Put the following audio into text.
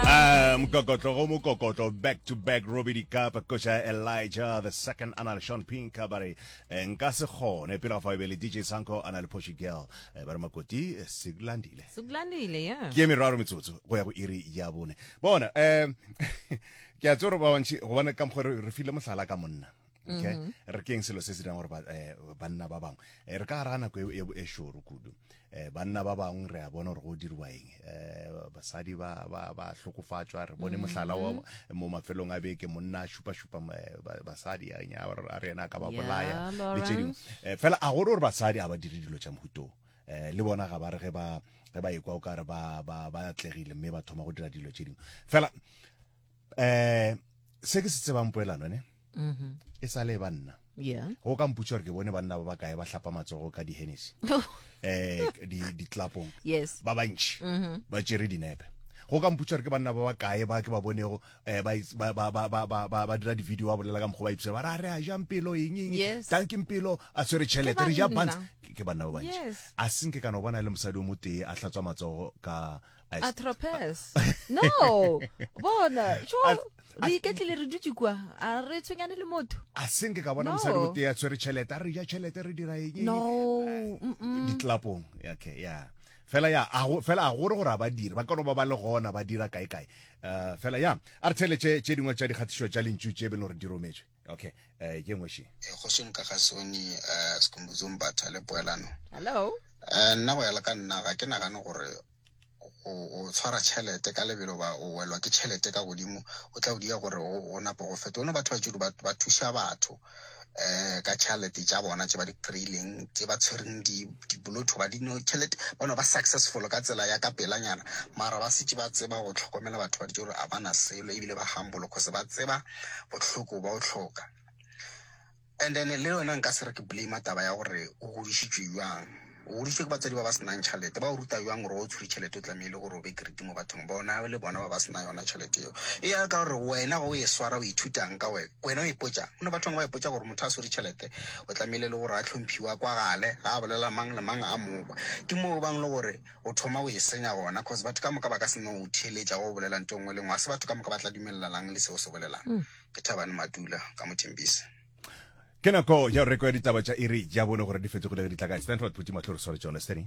Ah, mokokotlo go mokokotlo back to back robe dikapa koša elijah the second a na le sean pinka ba re eh, nka se kgone pele ga fa e be le dj sanko a na le poshi girl Eh, ba re makoti eh, se landile sekulandile ya ke meraro metsotso go ya go iri ya bone bona um ke a tsoro ba bantši gobane ka mokgwa re re file mohlala ka monna okay mm -hmm. re keng selo se se dirang gore eh, banna ba bangwe eh, re ka gara nako e, e, e šoro kudu um banna ba bangwe re a bona gore go dirwa eng um basadi ba hlokofatšwa re bone mohlala wa mm-hmm. mo mafelong a beke monna a šupa-šupa basadi a re ena a ka ba bolaya le tse dingwe um fela a gore gore basadi a ba dire dilo tša mohutong um le bona ga ba re ge ba ekwa o ka re ba atlegile mme ba thoma go dira dilo tše dingwe fela eh se ke se tsebang poelano ne mm-hmm. e sa le e ba nna go ka mputsa gore ke bone banna ba ba kae ba hlapa matsogo ka dihenesi um oh. eh, ditlapong ba bantšhi mm-hmm. ba tšere dinepe go ka mputsa gore ke banna ba ba kae ba ke ba bonego eh, ba dira di-video ba bolela ka mokgwa ba ipsa ba ra re a jang pelo engeng tankeng pelo a tshwere tšhelete re ja bans ke banna ba bantši a senke kana o bona e le mosadi o motee a hlatswa matsogo ka atropes no bona jo re iketlile re dutse kwa a re tshwenyane le motho a senke ka bona mosadi o tea tshwere tšhelete a re ja tšhelete re dira eng no ditlapong okay yeah fela ya fela a gore gore a badiri ba kano ba ba le gona ba dira kae kae eh, fela ya a re tshele tše dingwe tša dikgatišo tša lentšu tše beno re di rometswe okay eh ke ngwe she eh, go song ka ga sone eh skumbuzo mbatha le poelano hello eh nna go ya le ka nna ga ke nagane gore o tshwara tšhelete ka lebelo ba o welwa ke tšhelete ka godimo o tla o dia gore o napo go feta one batho ba tšedu ba thuša batho um ka tšhelete tša bona tse ba di kry-ileng tse ba tshwereng dibolotho ba dino tšhelete bano ba successful ka tsela ya ka pelanyana mara ba setse ba tseba go tlhokomela batho ba ditse gore a ba na selo ebile ba humble cause ba tseba bohloko ba o hloka and then le yona nka se re ke blame taba ya gore o godišitšwe jwang o godišitšwe ke batswadi ba ba senang tšhelete ba o ruta jwang gore o tshwere tšhelete o tlamehile gore o be keriti mo bathong bona le bona ba ba sena yona tšhelete eo e ya ka gore wena go e swara o ithutang ka wena wena o ipotsa go ne bathong ba ipotsa gore motho a swere tšhelete o tlamehile le gore a tlhomphiwa kwa gale ga a bolela mang le mang a mokwa ke moo bang le gore O thoma go e senya gona cause batho ka moka ba ka se no o theeletša go o bolela nto nngwe le nngwe. Ga se batho ka moka ba tla dumelelang le seo se bolelang. Mm. Ke Thabani Matula ka Mothembisi. Ke nako ya go rekoya ditaba tša iri ya bone gore di fetogile ge di tla kae. Stanford Phuti Matlho re sware tšone, Stanny.